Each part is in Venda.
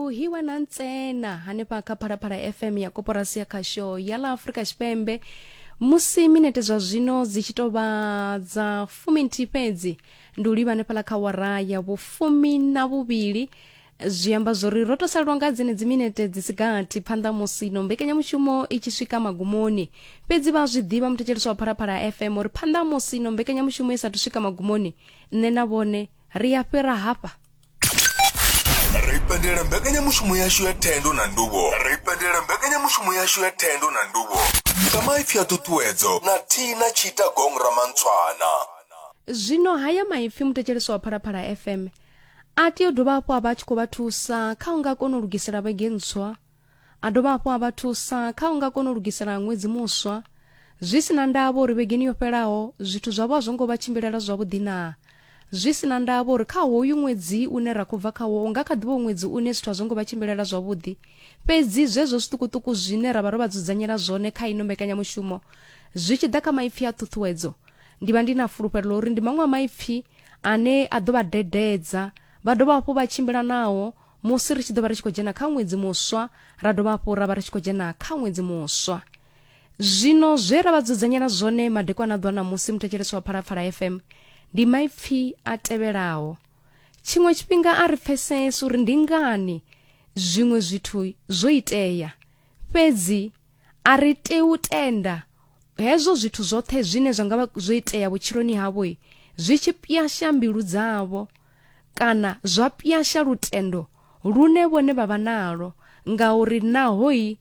hiwa na ntsena hanefha kha phalaphala fm ya koporasi ya khasho ya ḽa afurika tshipembe musi minete zwa zwino dzi tshi tou vha dza fuminthihi fhedzi ndi u livha hanefhaḽa kha wara ya vhufumi na vhuvhili zwi amba zwori ro to salelwa nga dzenedzi minete dzi si gathi phanḓa musi no mbekanyamushumo i tshi swika magumoni fhedzi vha zwi ḓivha muthetshelesi wa phalaphala fm uri phanḓa musi no mbekanyamushumo i sathu swika magumoni nṋe na vhone ri a fhira hafha ra ipendela mbekanyamushumo yashu ya thendo na nduvho ra ipendela mbekanyamushumo yashu ya thendo na nduvho nga maipfi a ṱuṱuwedzo na thina tshita gong ramantshwana Zwino haya maipfi muthetshelesi wa Phalaphala FM a tea u dovha hafhu a vha a tshi khou vha thusa kha u nga kona u lugisela vhege ntswa A dovha hafhu a vha thusa kha u nga kona u lugisela ṅwedzi muswa. Zwi si na ndavha uri vhegeni yo fhelaho zwithu zwavho a zwo ngo vha tshimbilela zwavhuḓi naa, zwi si na ndavha uri kha hoyu ṅwedzi une ra khou bva khawo u nga kha ḓi vha u ṅwedzi une zwithu a zwo ngo vha tshimbilela zwavhuḓi, fhedzi zwezwo zwiṱukuṱuku zwine ra vha ro vha dzudzanyela zwone kha ino mbekanyamushumo zwi tshi ḓa kha maipfi a ṱhuṱhuwedzo, ndi vha ndi na fulufhelo ḽa uri ndi maṅwe a maipfi ane a ḓo vha dededza vha dovha hafhu vha tshimbila nao. musi ri tshi ḓo vha ri tshi khou dzhena kha ṅwedzi muswa ra dovha hafhu ra vha ri tshi khou dzhena kha ṅwedzi muswa zwino zwe ra vha dzudzanyela zwone madekwana ḓwa na musi muthetshelesi wa phalapfala fm ndi maipfi a tevhelaho tshiṅwe tshifhinga a ri pfesese uri ndi ngani zwiṅwe zwithu zwo itea fhedzi a ri tei u tenda hezwo zwithu zwoṱhe zwine zwa nga vha zwo itea vhutshiloni havho zwi tshi pwyasha mbilu dzavho kana zwa pyasha lutendo lune vhone vha vha nalwo ngauri nahoi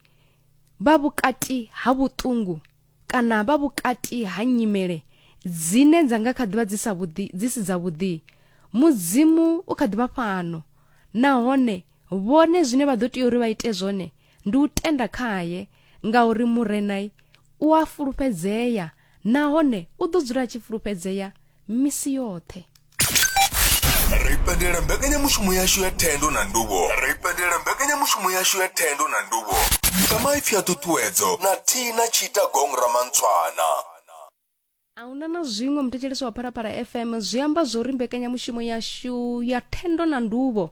vha vhukati ha vhuṱungu kana vha vhukati ha nyimele dzine dza nga kha ḓivha dzi sa vhuḓi dzi si dza vhuḓi mudzimu u kha ḓivha fhano nahone vhone zwine vha ḓo tea uri vha ite zwone ndi u tenda khaye ngauri murenai u a fulufhedzea nahone u ḓo dzula a tshi fulufhedzea misi yoṱhe ri pendela mbekanyamushumo yashu ya thendo na nduvho ri pendela mbekanyamushumo yashu ya thendo na nduvho nga maipfi a ṱuṱuwedzo na thina tshita gong ramantshwana a huna na zwiṅwe muthetshelesi wa phalaphala fm zwi amba zwo ri mbekanyamushumo yashu ya thendo na nduvho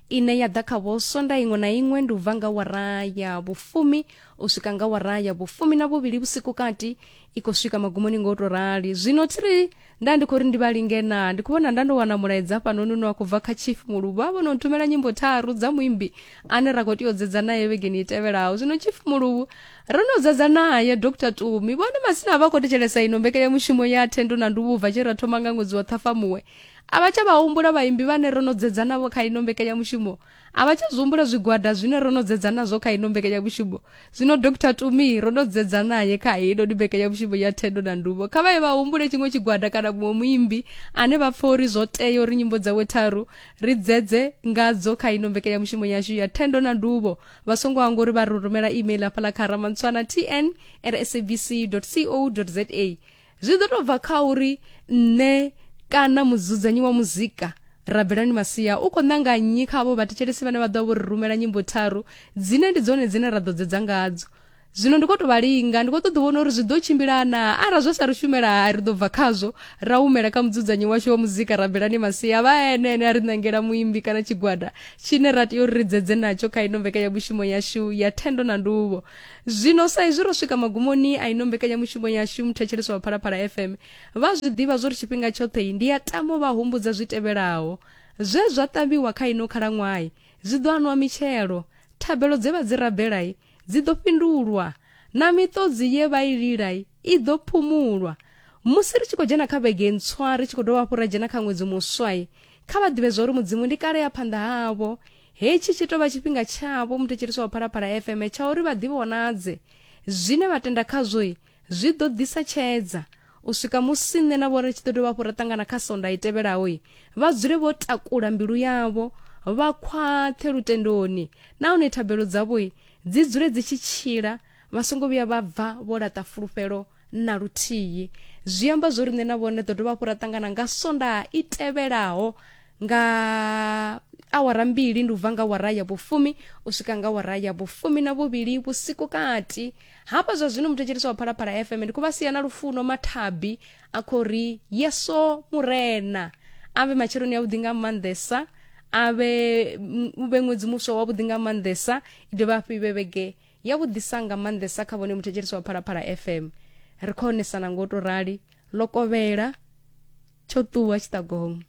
ine ya ḓa kha vho sonda iṅwe na iṅwe ndi u bva nga wara ya vhufumi u swika nga wara ya vhufumi na vhuvhili vhusiku kati i khou swika magumoni nga u tou rali zwino thi ri nda ndi khou ri ndi vha linge na ndi khou vhona nda ndo wana mulaedza hafhanoni une wa khou bva kha chief muluvha a vhono nthumela nyimbo tharu dza muimbi ane ra khou tea u dzedza naye vhegeni i tevhelaho zwino chief muluvhu ro no dzedza naye dr tumi vhone masina a vha khou thetshelesa ino mbekanyamushumo ya thendo na nduvhubva tshe ra thoma nga ṅwedzi wa ṱhafamuwe a vha tsha vha humbula vhaimbi vhane ro no dzedza navho kha ino mbekanyamushumo A vha tsha zwi humbula zwigwada zwine ro no dzedza nazwo kha ino mbekanyamushumo. Zwino Dr Tumi ro no dzedza nae kha heinoni mbekanyamushumo ya Thendo na Nduvho. Kha vha ye vha humbule tshiṅwe tshigwada kana muṅwe muimbi ane vha pfa uri zwo tea uri nyimbo dzawe tharu ri dzedze ngadzo kha ino mbekanyamushumo yashu ya Thendo na Nduvho. Vha songo hangwa uri vha ri rumela email hafhaḽa kha ramantswana tn at sabc co za. zwi ḓo tou bva kha uri nṋe kana mudzudzanyi wa muzika rabelani masia u khou ṋanga nnyi kha avho vhathetshelesi vhane vha ḓo vho ri rumela nyimbo tharu dzine ndi dzone dzine ra ḓo dzedza ngadzo zwino ndi khou tou vha linga ndi khou ṱoḓa vhona uri zwi ḓo tshimbilana arali zwa sa ri shumela hai ri ḓo bva khazwo ra humela kha mudzudzanyi washu wa muzika rabelani masia vha ene ene a ri ṋangela muimbi kana tshigwada tshine ra tea uri ri dzedze natsho kha ino mbekanyamushumo yashu ya thendo na nduvho zwino sa izwi ro swika magumoni a ino mbekanyamushumo yashu muthetshelesi wa phalaphala fm vha zwi ḓivha zwo ri tshifhinga tshoṱhe ndi ya tamo vha humbudza zwi tevhelaho zwe zwa ṱavhiwa kha ino khalaṅwahi zwi ḓo anwa mitshelo thabelo dze vha dzi rabelai dzi ḓo fhindulwa na miṱodzi ye vha i lilai i ḓo phumulwa musi ri tshi khou dzhena kha vhege ntswa ri tshi khou dovha hafhu ra dzhena kha ṅwedzi muswai kha vha ḓivhe zwa uri mudzimu ndi kale ya phanḓa havho hetshi tshi tou vha tshifhinga tshavho muthetshelisi wa phalaphala fm tsha uri vha ḓivhonadze zwine vha tenda khazwoi zwi ḓo ḓisa tshedza u swika musi nṋe na vhone tshi ḓo dovha hafhu ra ṱangana kha sonda i tevhelaho vha dzule vho takula mbilu yavho vha khwaṱhe lutendoni nahone thabelo dzavho dzi dzule dzi tshi tshila vha songo vhuya vha bva vho laṱa fulufhelo na luthihi zwi amba zwo riṋe na vhone ḓo dovha hafhu ra ṱangana nga sondaha i tevhelaho nga awara mbili ndi u bva nga wara ya vhufumi u swika nga wara ya vhufumi na vhuvhili vhusiku kati hafha zwa zwino muthetshelisi wa phalaphala fm ndi khou vha sia na lufuno mathabi a khou ri yeso murena a vhe matsheloni a vhuḓi nga maanḓesa a vhe u vhe ṅwedzi muswa wavhuḓi nga maanḓesa i dovha hafhu i vhe vhege ya vhuḓisa nga maanḓesa kha vhone muthetshelesi wa phalaphala fm ri khou onesana ngo to rali ḽo kovhela tsho ṱuwa tshiṱagomo